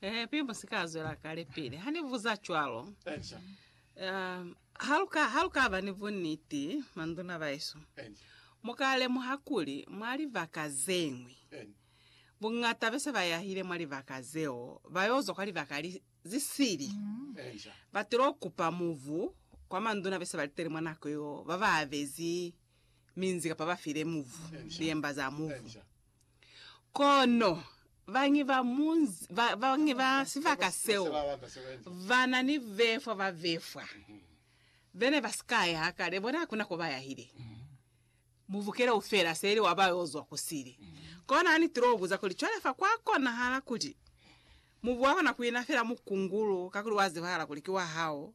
Eh, pili mu si ka zwela kale pili. Ha ni buza cwalo. Echa. Um, ha lu ka ha lu ka ba ni buniti manduna baesu. Echa. Mu ka lemuha kuli mwa libaka ze ñwi Echa. bungata bese ba yahile mwa libaka zeo ba yo zwa kwa libaka li zi sili. Echa. Ba tilo kupa muvu kwa manduna bese ba liteli mwa nako yo ba ba abezi minzi kapa ba file muvu, Echa. liemba za muvu. Echa. Kono bañwi ba munzi, ba, bañwi ba sibaka seo ba na ni befwa ba befwa be ne ba si ka ya hakale, bona ha ku na ko ba yahile. Mubuke leo feela se ili wa ba yo zwa ku sili. Kono ha ni til'o buza kuli, Cwale fa kwa konahala kuli mubu wa kona ku ina feela mukungulu kakuli wa zibahala kuli ki wa hao?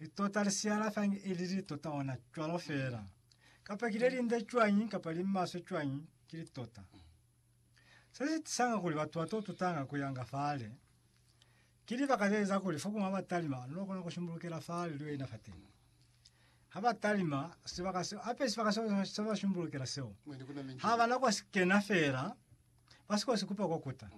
Litota li si alafangi ili litota ona cwalo fela. Kapa ki le linde cwañi kapa li maswe cwañi, ki litota. Se si tisanga kuli batu ba to tutanga ku yanga fale. Ki libaka ze eza kuli fo kuma ba talima lu kona ku shumbulukela fale lu yo ina fateni. Ha ba talima, sibaka seo, hape sibaka seo se ba shumbulukela seo, ha ba na kwa si kena fela, ba si ko si kupa kwa kuta.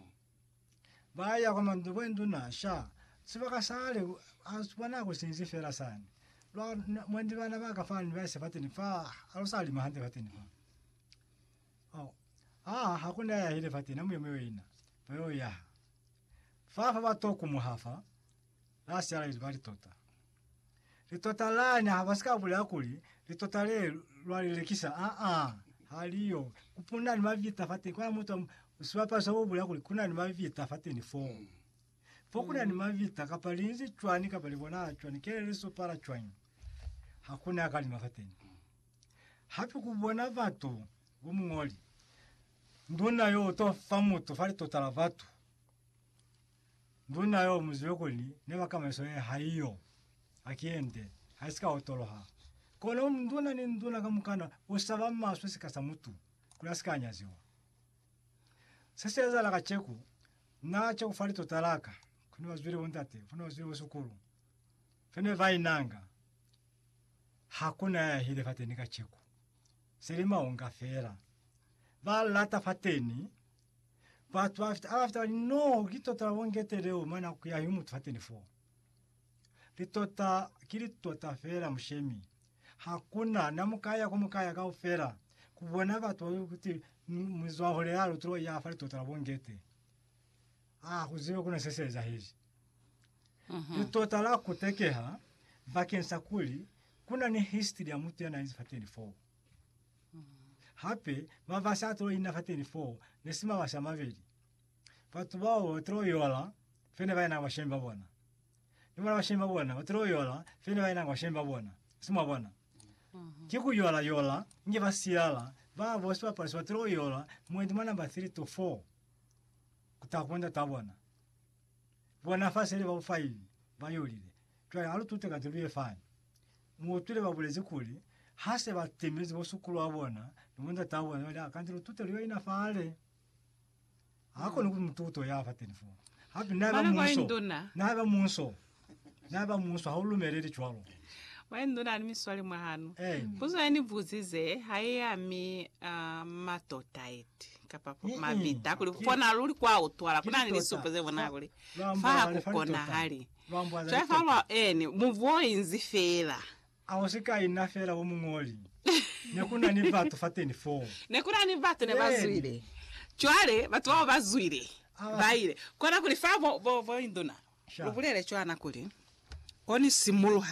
Ba ya kwa Mandubwenduna sha. Sibaka sale a kwa nako sinzi fela sani. Lwa mwendi bana baka fani ba se fateni fa alo sa lima hande fateni fa. Oh. Ah, hakuna ya hile fateni amuye muyo ina. Bayo ya. Fa fa ba toku muhafa. La siala izibali tota. Litota lani haba sika bulela kuli litota le lwa lilekisa a a haliyo kupuna ni mavita fateni kwa mutu sibapalo sa bulela kuli kuna ni mavita fateni fo fo kuna ni mavita kapa linzi cwani kapa li bona cwani kele li sopala cwani hakuna ya kalima fateni hape ku bona batu bo mungoli nduna yo to fa mutu fa litota la batu Nduna yo muzibe kuli neba kamaiso ye haiyo. Akiyende, haisika otoloha. Kono nduna ni nduna kamukana usaba maswe sika sa mutu, kuli asika anyaziwa. Se si ezahala kaceku, na ceku fa litota laka, kune bazwile bo ndate, kune bazwile bo sukulu, fene ba inanga. Hakuna ya yahile fateni kaceku. Seli maunga fela. Ba lata fateni, Batu ba fita, abafita bali noho ki tota labongete leo mane akuyahi umutu fateni fo. Litota ki litota fela mushemi. Hakuna namukaya kumukaya kaufela kubona batu babi kuti muzwahule ya lutulo ya fa litota labongete. A kuzibe kuna se se ezahezi. Mhm. Litota la kutekeha bakeng sa kuli kuna ni history ya mutu yana izi fateni fo. Hape ba ba sa tulo ina fateni foo ne si mawashi a mabeli. Batu bao ba tulo yola fe ne ba enanga bashemi ba bona. Ni bona bashemi ba bona ba tulo yola fe ne ba enanga bashemi ba bona. Si mwa bona? Ki ku yola yola inge ba silala, ba bo sibapalo se ba tulo yola mwendi mwa namba 3 to 4 ku taha ku bo ndat'a bona. Bona fa seli baufaili ba yolile. Cwale ha lu tute ka zilu ye fani. Mu utwile ba bulezi kuli, Ha se ba timezi bo sukulu wa bona ni bo ndat'a bona, cwale a kanti lu tute lu yo ina fale. Ha koni ku tuto ya fateni foo. Hape, na haiba munso, na haiba munso Na ba muswa, ha u lumeleli cwalo. Mwa indu na ni miswali mwa hanu. Eh. Puzo ya ni buzize ha i ami uh, matota eti kapa po- Mm-mm. mabita kuli Ki- kona luli kwa utwala kuna ni Ki litota. lisupo ze bona Fa- kuli lwa fa mbwala ha le fa ku litota. konahali Lwa mbwala jwale fa litota. lwa eni mubu o inzi fela A u si ka ina fela u muñoli. Ne ku na ni batu fateni foo. Ne ku na ni batu ne ba zwile. Cwale, batu bao ba zwile, ba ile. Kona kuli fa bo, bo, bo induna, lu bulele cwana kuli, Ko ni simuluha